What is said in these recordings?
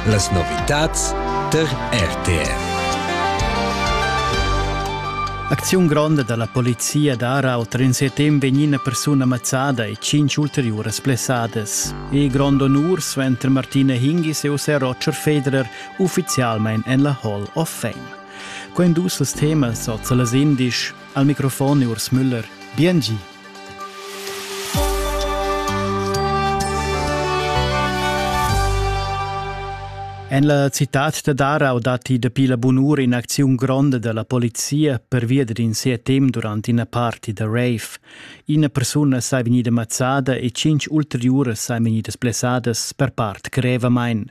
Las novitads tar RTR. Acziun gronda dalla polizia d'Arau tren setem vegn ina persuna mazzada e cinc ulteriuras plessadas. E grond honur suenter Martina Hingis e José Roger Federer ufficialmein en la Hall of Fame. Quei dus temas oz las indisch. Al microfon Urs Müller. Bien gi. En la citad da Darau datti dapi la bun'ura in'acziun gronda da la polizia pervia d'in CTM durant ina party da rave. Ina persuna sei vegnida mazzada e cinq ulteriuras sei vegnidas blessadas per part grevamain.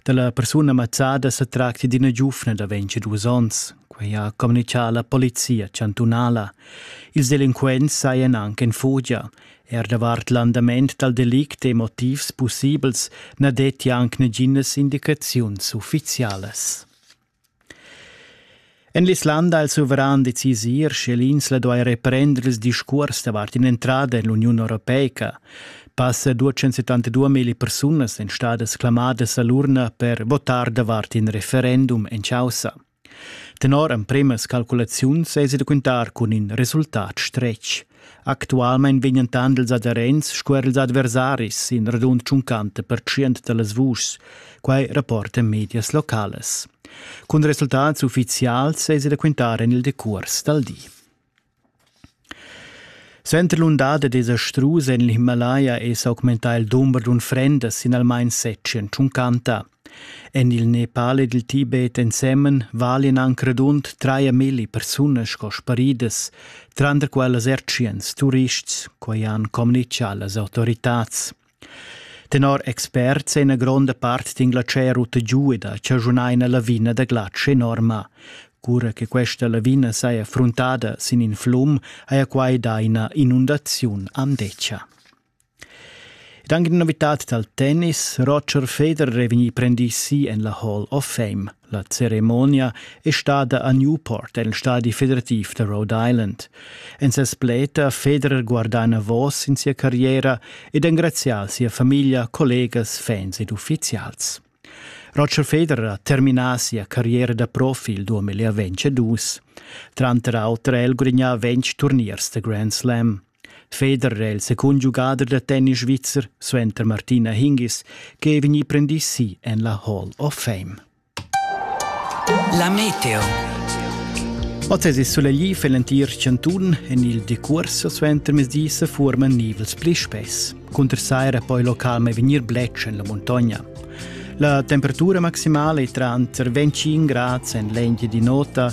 Da la persuna mazzada sa tracti d'ina giuvna da 22 onns. Quei ha communicà la polizia chantunala. Ils delinquents sajan anc en fugia. Er davart l'andament dal delict e motivs pussibels na detti anc naginas indicaziuns uffizialas. En l'Islanda ha il suveran decisir, sche l'insla duai reprender ils discurs davart in'entrada en l'Uniun Europeica. Passa 272.000 persunas èn stadas clamadas a l'urna per votar davart in referendum en chaussa. Tenor empremas calculaziuns esi da quintar cun in resultat stretg. Actualmein vegnan tant ils aderents sco er ils adversaris in radund tschuncant pertschient dallas vuschs, quai rapportan medias locales. Cun resultats ufficials esi da quintar en il decuors dal di. Suenter l'undada desa strus en l'Himalaya è s'augmentà il dumber d'unfrendas sin almain setg en tschuncanta. En il Nepal ed il Tibet ensemen valian anc radund traia milli persunas sco sparidas, tranter quellas ertschiens, turists, quai han communitgà las autoritads. Tenor experts è ina gronda part d'Inglaterra rutta giu ed ha chaschunà ina lavina da glatsch enorma. Cura che questa lavina saja fruntada sin in flum, haja quai dà ina inundaziun amdetscha. Ed anche in novitad dal tennis, Roger Federer è vegnì prendì si en la Hall of Fame. La ceremonia è stada a Newport, el stadi federativ da Rhode Island. En ses pleta Federer guardà enavos in sia carriera ed engrazià sia famiglia, collegas, fans ed uffizials. Roger Federer ha terminà sia carriera da profi il 2022. Tranter auter ha el gudagnà ventg turniers da Grand Slam. Federer è il secund giugader da tennis svizzer suenter Martina Hingis che è vegnì prendì si en la Hall of Fame. La meteo. Oz è soleglì für l'entir Cantun. En il decurs suenter mesdis forman nivels pli spess. Cunter saira poi local mai vegnir bletsch en la muntogna. La temperatura maximale è tranter 25 gradi en l'engia di nota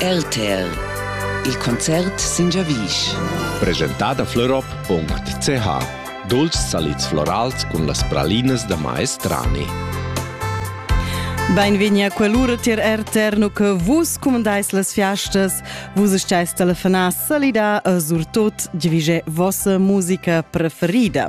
RTL Il concert sin giavisch. Presentada florop.ch Dulcis salids florals cun las pralinas da maestrani. Beinvegni a quell'ura tier RTR no che vus comandais las fiastas, vus steis telefonar salida e surtot divige vossa musica preferida.